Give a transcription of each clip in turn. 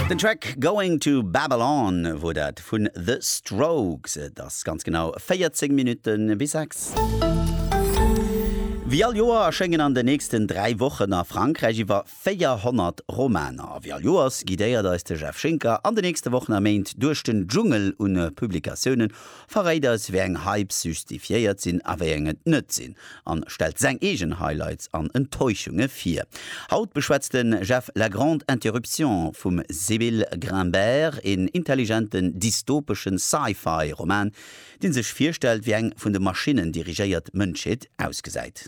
Den Track Going to Babylon wor dat vun The Strokes. Et ass ganz genau 14 Minutten bis 6. Wéi all Joer erschéngen an den nächsten 3 Wochen a Frankräich iwwer 400 Romaner. A wéi all Joers guidéiert eis de Jeff Schinker an den nächste Wochen a Méint duerch den Dschungel un Publikatiounen, Verréit eis wéi eng Hypes justifiéiert sinn a wéi eng et net sinn an stellt seng eegen Highlights an Enttäuschunge vir. Haut beschwätzt den Jeff La Grande Interruption vum Sybil Grimbert, een intelligenten dystopeschen Sci-Fi Roman, deen sech virstellt wéi eng vun de Maschinnen dirigéiert Mënschheet ausgesäit.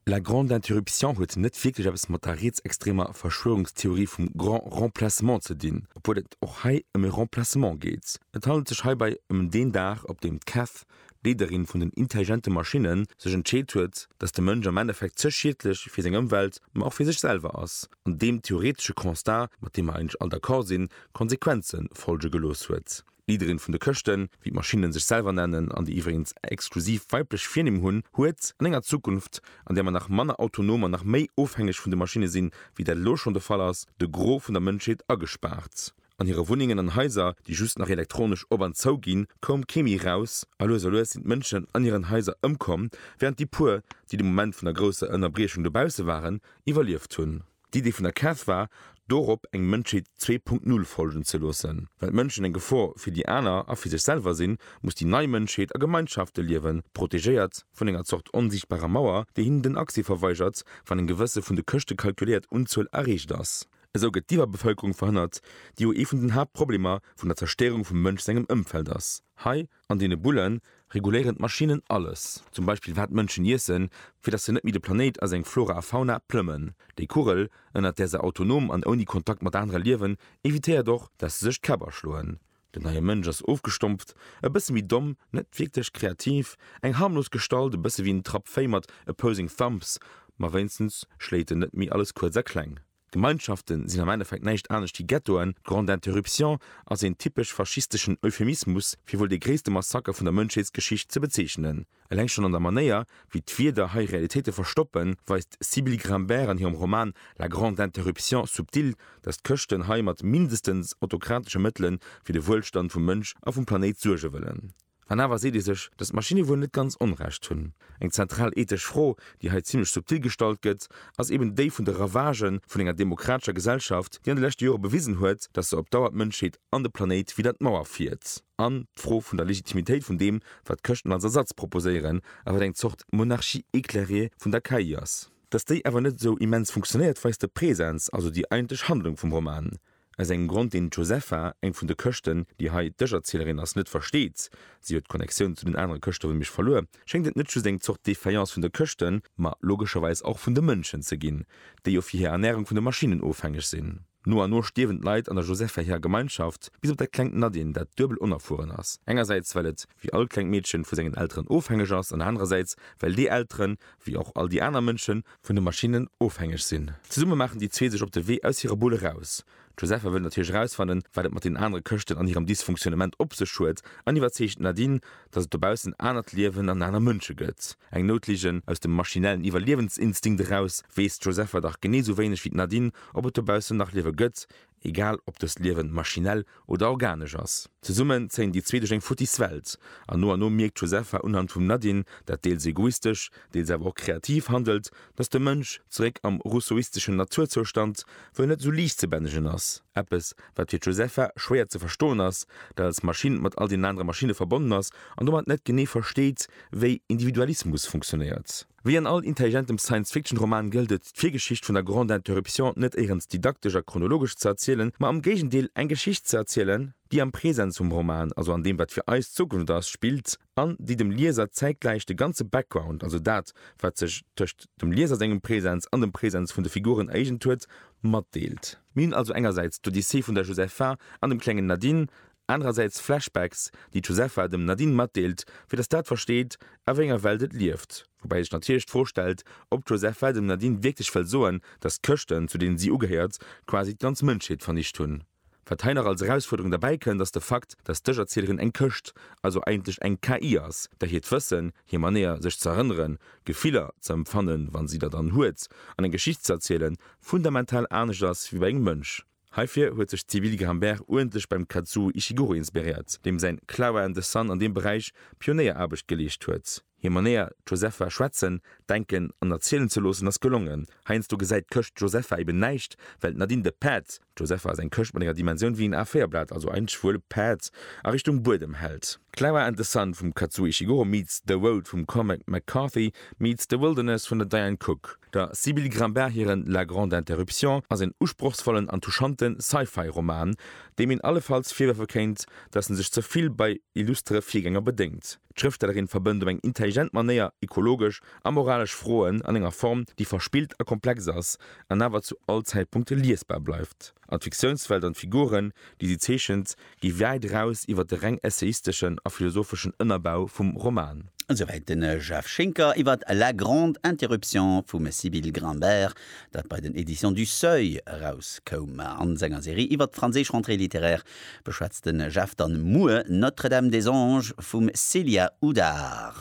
La grande interruption huet net wierklech eppes mat der rietsextremer Verschwörungstheorie vum Grand Remplacement ze dinn, obwuel et och hei ëm e Remplacement geet. Et handelt sech heibei ëm deen Dag, op deem d'Cath, d'Leederin vun den intelligente Maschinnen, sech entscheet huet, dass de Mënsch am Endeffekt ze schiedlech fir seng Ëmwelt, ma och fir sech selwer ass, an deem theoretesche Constat, mat deem mer eigentlech all d'accord sinn, Konsequenze folge gelooss huet. D'Leaderin vun de Këschten, wéi d'Maschinnen sech selwer nennen an déi iwwregens exklusiv weiblech Virnimm hunn, huet, an enger Zukunft, an där mer nach manner autonom an nach méi ofhängeg vun de Maschinne sinn, wéi dat elo schonn de Fall ass, de Gros vun der Mënschheet agespaart. An hire Wunnengen an Haiser, déi just nach elektronesch op an zou ginn, koum kee méi raus, a lues a lues sinn d'Mënschen an hiren Haiser ëmkomm, während déi puer, déi de Moment vun der grousser Ënnerbriechung dobausse waren, iwwerlieft hunn. D'Idee vun der Cath war, dorop eng Mënschheet 2.0 folgen ze loossen. Well d'Mënschen eng Gefor fir déi aner a fir sech selwer sinn, muss déi nei Mënschheet a Gemeinschafte liewen, protegéiert vun enger Zort onsiichtbarer Mauer, déi hinnen den Accès verweigert, wann eng gewësse vun de Këschte kalkuléiert Unzuel erreecht ass. Esou gëtt d'Iwwerbevölkerung verhënnert, déi jo ee vun den Haaptproblemer vun der Zerstéierung vum Mënsch sengem Ëmfeld ass. Hei An deene Bulle reguléieren d'Maschinnen alles, zum Beispill wat d'Mënschen iessen, fir datt se net méi de Planéit a seng Flora a Fauna plëmmen. Déi Kugel, ënnert där se autonom an ouni Kontakt mat anere liewen, evitéiert och, datt se sech d'Käpp aschloen. Den neie Mënsch ass ofgestompft, e bësse méi domm, net wierklech kreativ, eng harmlos Gestalt, e bësse wéi en Trapp Véi mat opposing thumbs, ma wéinstens schléit en net méi alles kuerz a kleng. Gemeinschaften sinn am Endeffekt näischt anescht wéi Ghettoen, d'Grande Interruption ass een typesch faschisteschen Euphemismus fir wuel dee gréisste Massaker vun der Mënschheetsgeschicht ze bezeechnen. Eleng schonn an der Manéier, wéi d'Wierder hei Realitéite verstoppen, weist d'Sybille Grimbert an hirem Roman La grande interruption subtil, datt d'Chrëschten hei mat mindestens autokratesche Mëttele fir de Wuelstand vum Mënsch a vum Planéit suerge wëllen. An awer seet ee sech, datt d'Maschinne wuel net ganz Onrecht hunn. Eng zentral ethesch Fro, déi hei zimmlech subtil gestallt gëtt, ass eben déi vun de Ravagë vun enger demokratescher Gesellschaft, déi an de leschte Jore bewisen huet, datt se op Dauer d'Mënschheet an de Planéit widder d'Mauer fiert. An d'Fro vun der Legitimitéit vun deem, wat d'Chrëschten als Ersatz proposéieren, a wat eng Zort Monarchie éclairée vun der KI ass. Datt déi awer net esou immens funktionéiert, weist de Präsens, also déi eigentlech Handlung vum Roman. Aus engem Grond, deen d'Josefa, eng vun de Këschten, déi hei d'Dëscherzielerin ass, net versteet, si huet d'Connectioun zu den anere Këschte vun Miersch verluer, schéngt et net just eng Zort Defaillance vun de Këschten, ma logescherweis och vun de Mënschen ze ginn, déi jo fir hir Ernärung vun de Maschinnen ofhängeg sinn. No an no stierwen d'Leit an der Josefa hirer Gemeinschaft, bis op dat klengt Nadine, dat duebel onerfueren ass, engersäits well et, wéi all klengt Meedchen, vu sengen Elteren ofhängeg ass, an anerersäits well déi Elteren, wéi och all déi aner Mënschen, vun de Maschinnen ofhängeg sinn. Zesumme maachen déi zwee sech op de Wee aus hirer Bull eraus. D'Josepha wëll natierlech erausfannen, wat et mat den anere Këschten an hirem Dysfunktionnement op sech huet an iwwerzeegt d'Nadine, dass et dobaussen en anert Liewen an aner Mënsche gëtt. Eng Noutligen, Aus dem maschinellen Iwwerliewensinstinkt eraus weess d'Josepha dach genee sou wéineg wéi d'Nadine, ob et dobaussen nach Liewe gëtt, Egal ob dëst Liewen maschinell oder organesch ass. Zesummen zéien déi zwee duerch eng futtis Welt, an no an no mierkt d'Josepha unhand vum Nadine, dat deels egoistesch, deels awer och kreativ handelt, dass de Mënsch, zeréck am rousseauisteschen Naturzoustand, wuel net esou liicht ze bännegen ass. Eppes, wat fir d'Josepha schwéier ze verstoen ass, dat als Maschinn mat all deenen anere Maschinne verbonnen ass an domat net genee versteet, wéi Individualismus funktionéiert. Wéi an all intelligentem Science-Fiction-Roman gëllt et, d'Virgeschicht vun der Grande Interruption net éirens didaktesch a chronologesch ze erzielen, ma am Géigendeel eng Geschicht ze erzielen, déi am Presens vum Roman, also an deem, wat fir eis d'Zukunft ass, spillt an déi dem Lieser zäitgläich de ganze Background, also dat, wat sech tëscht dem Lieser sengem Presens an dem Presens vun de Figuren ereegent huet, matdeelt. Mir hunn also engersäits d'Odyssee vun der Josepha an dem klengen Nadine, Anerersäits Flashbacks, déi d'Josefa dem Nadine matdeelt, fir datt dat versteet, a wéi enger Welt et lieft. Woubäi sech natierlech d'Fro stellt, ob d'Josefa dem Nadine wierklech wëll soen, datt d'Chrëschten, zu deene si ugehéiert, quasi d'ganz Mënschheet vernicht hunn. Wat hei nach als Erausfuerderung derbäi kënnt, ass de Fakt, datt d'Ech-Erzielerin eng Chrëscht, also eigentlech eng KI ass, där hiert Wëssen, hir Manéier, sech z'erënneren, Gefiller ze empfannen, wa si der dann huet, an eng Geschicht z'erzielen, fundamental anescht ass wéi bei engem Mënsch. Heifir huet sech d'Sybille Grimbert uerdentlech beim Kazuo Ishiguro inspiréiert, deem säin Clara and the Sun an deem Beräich Pionéieraarbecht geleescht huet. Hir Manéier, d'Josepha schwätzen, denken an erzielen ze loossen, ass gelongen. Heiansdo gesäit d'Këscht d'Josepha eben näischt, well d'Nadine de Päerd, d'Josepha ass eng Këscht mat enger Dimensioun wéi en A-Véierblat, also ein schwuele Päerd, a Richtung Buedem hält. Clara and the Sun vum Kazuo Ishiguro meets The Road vum Cormac McCarthy meets The Wilderness vun der Diane Cooke. Der Sybille Grimbart hiren La grande interruption ass een usprochsvollen an touchante Sci-Fi-Roman, deem een allefalls virwërfe kéint, datt en sech ze vill bei illustere Virgänger bedéngt. D'Schrëftstellerin verbënnt op eng intelligent Manéier ekologesch a moralesch Froen an enger Form, déi verspillt a komplex ass, an awer zu all Zäitpunkt liesbar bleift. An d'Fiktiounswelt an d'Figuren, déi si zeechent, gi wäit eraus iwwer de reng essayisteschen a philosopheschen Ënnerbau vum Roman. Esouwäit de Jeff Schinker iwwer La grande interruption vum Sybille Grimbert, dat bei den Editions du Seuil erauskoum. A senger Serie iwwer d'franséisch Rentrée littéraire Beschwätzt den Jeff dann muer Notre Dame des Anges vum Célia Houdard?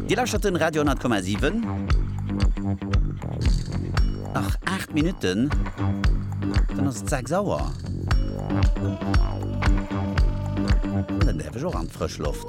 Dir lauschtert den Radio 10,7. Nach 8 Minutten dann ass et 6 Auer. Dann däerf ech och an d'Frësch Loft.